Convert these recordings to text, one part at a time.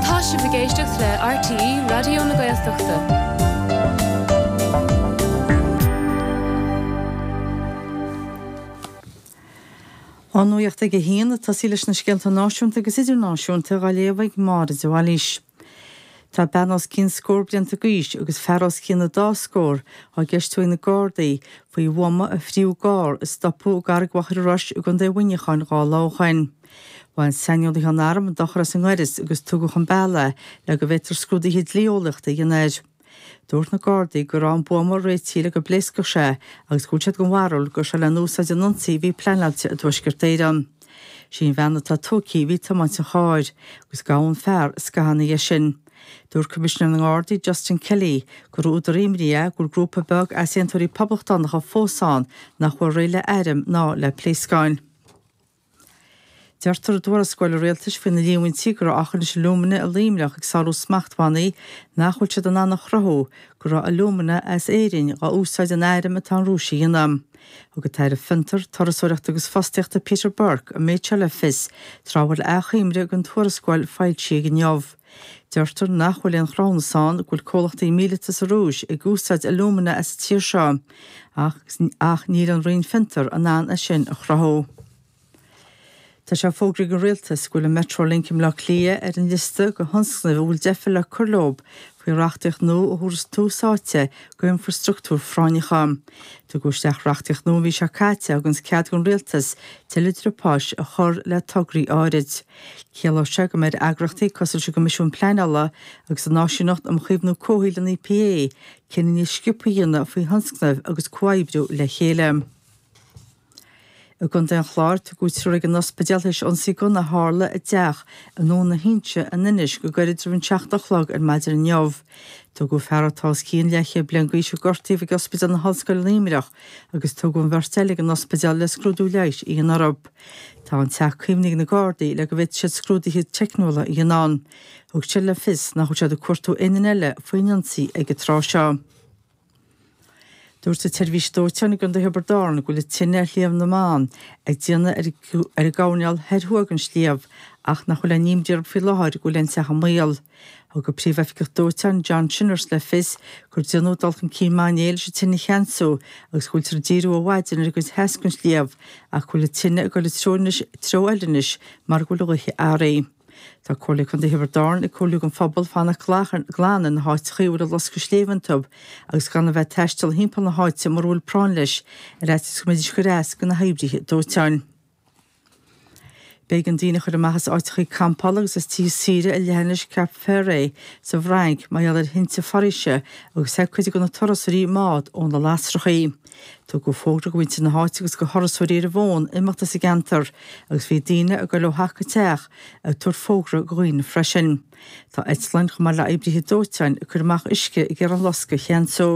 Tá sibh ag éisteacht le RTÉ Raidió na Gaeltachta. An nuacht ag a haon a tosaí leis na scéalta náisiúnta agus idirnáisiúnta á léamh ag Máire de Bhailís. Tá bean os cionn scór blianta d'aois agus fear os cionn an dá scór á gceistiú ag na Gardaí faoi bhuama a fríothadh i gcarr a stopadh i gCarraig Mhachaire Rois i gcontae Mhuineacháin dhá lá ó shin. Bhain saineolaithe an airm dochar as an ngaireas agus tugadh chun bealaigh é le go bhféadfar scrúduithe dlí-eolaíochta a dhéanamh air. Dúirt na Gardaí go raibh an buama réitithe le go bpléascfadh sé agus go bhfuil siad den bharúil go raibh sé le n-úsáid in ionsaí a bhí pleanáilte i dTuaisceart Éireann. Sí an bhean atá tógthaí a bhí ag tiomáint an chairr agus gabhadh an fear scaitheamh ina dhiaidh sin. Dúirt Coimisinéir na nGardaí Justin Kelly gur údar imní é go bhfuil grúpa beag easaontóirí poblachtánacha fós ann nach bhfuil réidh le airm ná le pléascáin. Deirtear i dtuarascáil rialtais faoi na líomhaintí go raibh Aughinish Alumina i Luimneach ag sárú smachtbhannaí nach bhfuil siad in ann a chruthú go raibh alumina as Éirinn á úsáid in airm atá an Rúis a dhéanamh. Thug an tAire Fiontar, Turasóireachta agus Fostaíochta Peter Burke an méid seo le fios tráth a bhfuil athchoimre den tuarascáil foilsithe inniu. Deirtear nach bhfuil aon chruthúnas ann go bhfuil comhlachtaí míleata sa Rúis ag úsáid alúmana as an tír seo, ach ach níl an Roinn Fiontar in ann é sin a chruthú. Tá sé fógraithe ag an Rialtas go bhfuil an Metrolink i mBleá Cliath ar an liosta de thionscnaimh a bhfuil deifir le cur leo faoi reachtaíocht nua a thabharfas tús áite do infreastruchtúir phráinneacha. Tugadh isteach reachtaíocht nua an mhí seo caite a thuganns cead don Rialtas tuilleadh driopáis a chur le tograí áirid. Ciallóidh sé go mbeidh eagrachtaí cosúil leis an gCoimisiún Pleanála agus an Áisíneacht um Chaomhnú Comhshaoil an EPA cinneadh níos sciobtha a dhéanamh faoi thionscnaimh agus comhoibriú le chéile. I gContae an Chláir, tugadh triúr ag an ospidéal théis ionsaí gunna a tharla i dteach i nDún na hInse in Inis go gairid roimh an seacht a chlog ar maidin inniu. Tugadh fear atá os cionn leathchéad bliain d'aois a gortaíodh ag Ospidéal na hOllscoile i Luimneach agus tugadh an bheirt eile ag an ospidéal le scrúdú leighis a dhéanamh orthu. Tá an teach caomhnaithe ag na Gardaí le go bhféadfaidh siad scrúduithe teicniúla a dhéanamh ann. Thug siad le fios nach bhfuil siad ag cuartú éinne eile faoin ionsaí ag an tráth seo. Dúirt an tSeirbhís Dóiteáin i gContae Thiobraid Árann go bhfuil an tine ar Shliabh na mBan ag déanamh ar an gcoirnéal thoir thuaidh den sliabh ach nach bhfuil aon imní orthu faoi láthair go bhfuil aon teach i mbaol. Thug an Príomh-Oifigeach Dóiteáin, John Shinnors, le fios gur déanadh dul chun cinn maith inné leis an tine a cheansú agus go bhfuiltear ag díriú ó mhaidin ar an gcuid theas den sliabh ach go bhfuil an tine ag dul i dtreo eile anois mar go bhfuil an ghaoth athraithe. Tá Comhairle Contae Thiobraid Árann ag comhairliú don phobal fanacht glan ar na háiteachaí a bhfuil an loscadh sléibhe iontu agus gan a bheith ag taisteal thimpeall na háite mura bhfuil práinn leis, ar fhaitíos go mbeidis ag cur as go na hoibrithe dóiteáin. B'éigean daoine a chur amach as áiteachaí campála agus as tithe saoire ar leathinis Cap Ferret sa bhFrainc mar gheall ar thinte foraoise agus theith cuid de na turasóirí i mbád ó na lasrachaí. Tugadh fógra go muintir na háite agus go thurasóirí ar an bhfón imeacht as an gceantar agus bhí daoine ag goil ó theach go teach ag tabhairt fógra go dhaoine freisin. Tá eitleáin, chomh maith le oibrithe dóiteáin, ag cur amach uisce ag iarraidh an loscadh a cheansú.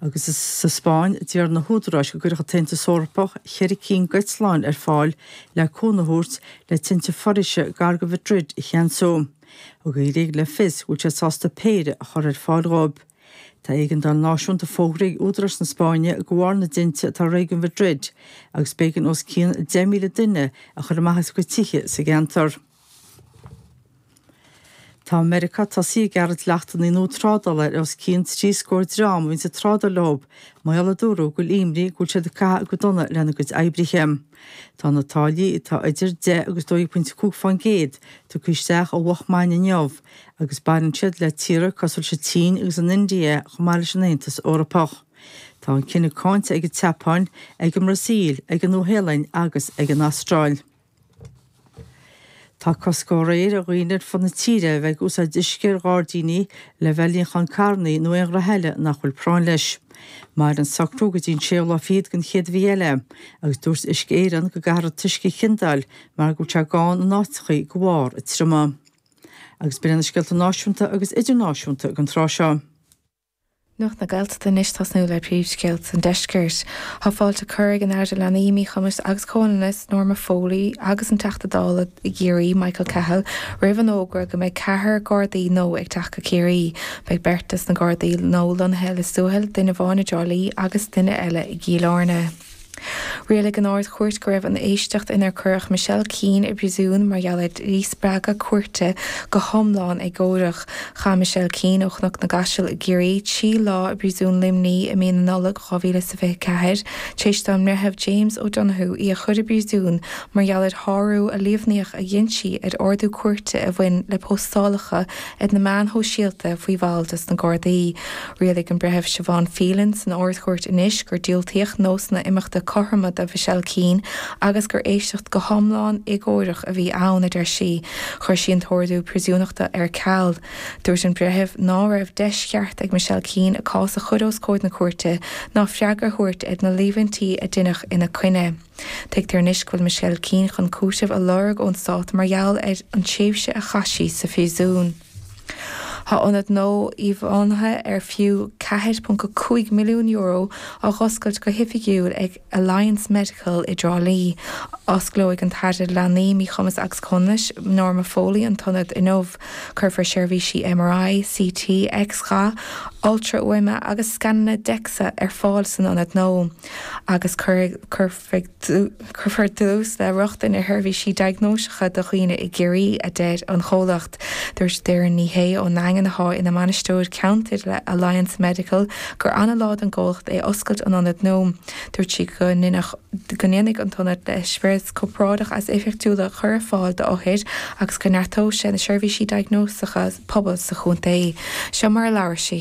Agus sa Spáinn, d'iarr na húdaráis go gcuirfeadh an tAontas Eorpach ceithre cinn d'eitleáin ar fáil le cúnamh a thabhairt le tinte foraoise gar go Mhadrid a cheansú. Thug an Ghréig le fios go bhfuil sé sásta péire a chur ar fáil dhóibh. Tá éigeandáil náisiúnta fógartha ag údaráis na Spáinne de bharr na dtinte atá i réigiún Mhadrid agus b'éigean os cionn 10,000 duine a chur amach as a gcuid tithe sa gceantar. Tá Meiriceá tosaithe ag gearradh dleachtanna nua trádála ar os cionn trí scór dream a bhíonn ag trádáil leo, mar gheall a dúradh go bhfuil imní go bhfuil siad ag caitheamh go dona lena gcuid oibrithe. Tá na táillí, atá idir deich agus dó dhéag pointe a cúig fán gcéad, tugtha isteach ó mhoch maidin inniu agus baineann siad le tíortha cosúil leis an tSín agus an India chomh maith leis an Aontas Eorpach. Tá an cinneadh cáinte ag an tSeapáin, ag an mBrasaíl, ag an Nua-Shéalainn agus ag an Astráil. Tá cosc ó aréir ar dhaoine ar fud na tíre a bheith ag úsáid uisce ar ghairdíní le bheith ag níochán carrannaí nó aon ghraithe eile nach bhfuil práinn leis. Mairfidh an socrú go dtí an séú lá fichead den chéad mhí eile, agus dúirt Uisce Éireann go gcaithfear an t-uisce a chiondáil mar go bhfuil sé gann in áiteachaí go bharr an triomaigh. Agus b'in iad na scéalta náisiúnta agus idirnáisiúnta ag an tráth seo. Nuacht na Gaeltachta anois ag tosnú le príomhscéalta an deiscirt. Tá fáilte curtha ag an Aire do Leanaí, Míchumas agus Comhionannas, Norma Foley agus an Teachta Dála i gCiarraí, Michael Cahill roimh an fhógra go mbeidh ceathrar Gardaí nua ag teacht go Ciarraí. Beidh beirt des na Gardaí nua lonnaithe i Lios Tuathail, duine amháin i dTrá Lí agus duine eile i gCill Airne. Rialaigh an Ard-Chúirt go raibh an éisteacht inar cuireadh Michelle Keane i bpríosún mar gheall ar dhíspeagadh cúirte go hiomlán éagórach. Chaith Michelle Keane ó Chnoc na gCaiseal i gCiarraí trí lá i bPríosún Luimní i mí na Nollag 2024 tar éis don mBreitheamh James O'Donohoe í a chur i bpríosún mar gheall ar shárú a líomhnaíodh a dhein sí ar ordú cúirte a bhain le postálacha Ar na meáin shóisialta faoi bhall des na Gardaí, rialaigh an Breitheamh Siobhán Phelan san Ard-Chúirt anois gur diúltaíodh nósanna imeachta cothroma do Mhichelle Keane agus gur éisteacht go hiomlán éagóireach a bhí ann, a deir sí. Chuir sí an t-ordú príosúnachta ar ceal. Dúirt an Breitheamh ná raibh deis cheart ag Michelle Keane a cás a chur os comhair na cúirte ná freagra a thabhairt ar na líomhaintí a deineadh ina coinne. Tuigtear anois go bhfuil Michelle Keane chun cúitimh a lorg ón stát mar gheall ar an tréimhse a chaith sí sa phríosún. Tá ionad nua íomháithe ar fiú €4.5 milliún á dh'oscailt go hoifigiúil ag Alliance Medical i dTrá Lí. Osclóidh an tAire Leanaí, Míchumas agus Comhionannais, Norma Foley an t-ionad inniu. Cuirfear seirbhísí MRI, CT, X-gha, ultrafhuaime agus scananna DEXA ar fáil san ionad nua. agus cuirfear dlús le rochtain ar sheirbhísí diagnóiseacha do dhaoine i gCiarraí, a deir an comhlacht. Dúirt Doireann Ní Shé ón nDaingean atá ina mbainisteoir ceantair le Alliance Medical gur an-lá don gcomhlacht é oscailt an ionaid nua. Dúirt sí go ndéanfaidh an t-ionad eispéireas corparáideach is éifeachtúla a chur ar fáil d'othair agus go neartóidh sé na seirbhísí diagnóiseacha pobail sa chontae. Seo mar a labhair sí.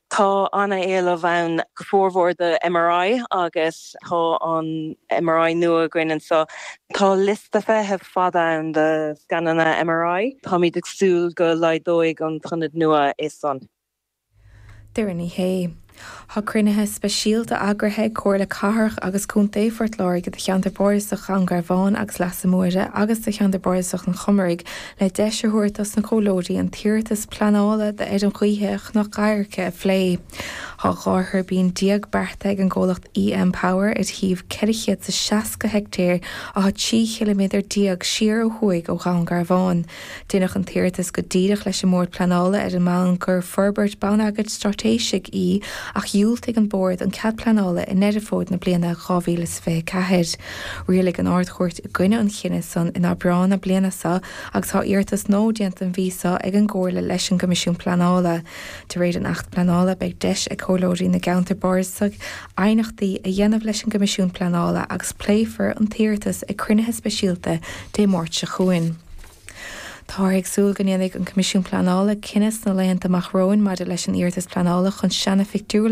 Tá an-éileamh ann go formhór do MRI agus tá an MRI nua againn anseo. Tá liosta feithimh fada ann do scananna MRI. Táimid ag súil go laghdóidh an t-ionad nua é san. Doireann Ní Shé. Tá cruinnithe speisialta eagraithe ag Comhairle Cathrach agus Contae Phort Láirge do cheantar Bardasach Dhún Garbhán agus Leasa Móire agus do cheantar Bardasach an Chomaraigh, le deis a thabhairt dos na comhairleoirí an t-iarratas pleanála d'fheirm ghaoithe Chnoc Adhairce a phlé. Tá dhá thuirbín déag beartaithe ag an gcomhlacht EM Power ar shuíomh 460 heictéar atá 13 chiliméadar siar ó thuaidh ó Dhún Garbhán. Deineadh an t-iarratas go díreach leis an mBord Pleanála ar an mbonn gur forbairt bonneagair straitéisigh í ach dhiúltaigh an Bord an cead pleanála i nDeireadh Fómhair na bliana 2024. Rialaigh an Ard-Chúirt i gcoinne an chinnidh san in Aibreán na bliana so agus tá iarratas nua déanta an mhí so ag an gComhairle leis an gCoimisiún Pleanála. De réir an Acht Pleanála beidh deis ag Comhairleoirí na gCeantar Bardasach aighneachtaí a dhéanamh leis an gCoimisiún Pleanála agus pléifear an t-iarratas ag cruinnithe speisialta Dé Máirt seo chugainn. Táthar ag súil go ndéanfaidh an Coimisiún Pleanála cinneadh sna laethanta amach romhainn maidir leis an iarratas pleanála chun seana-phictiúrlann a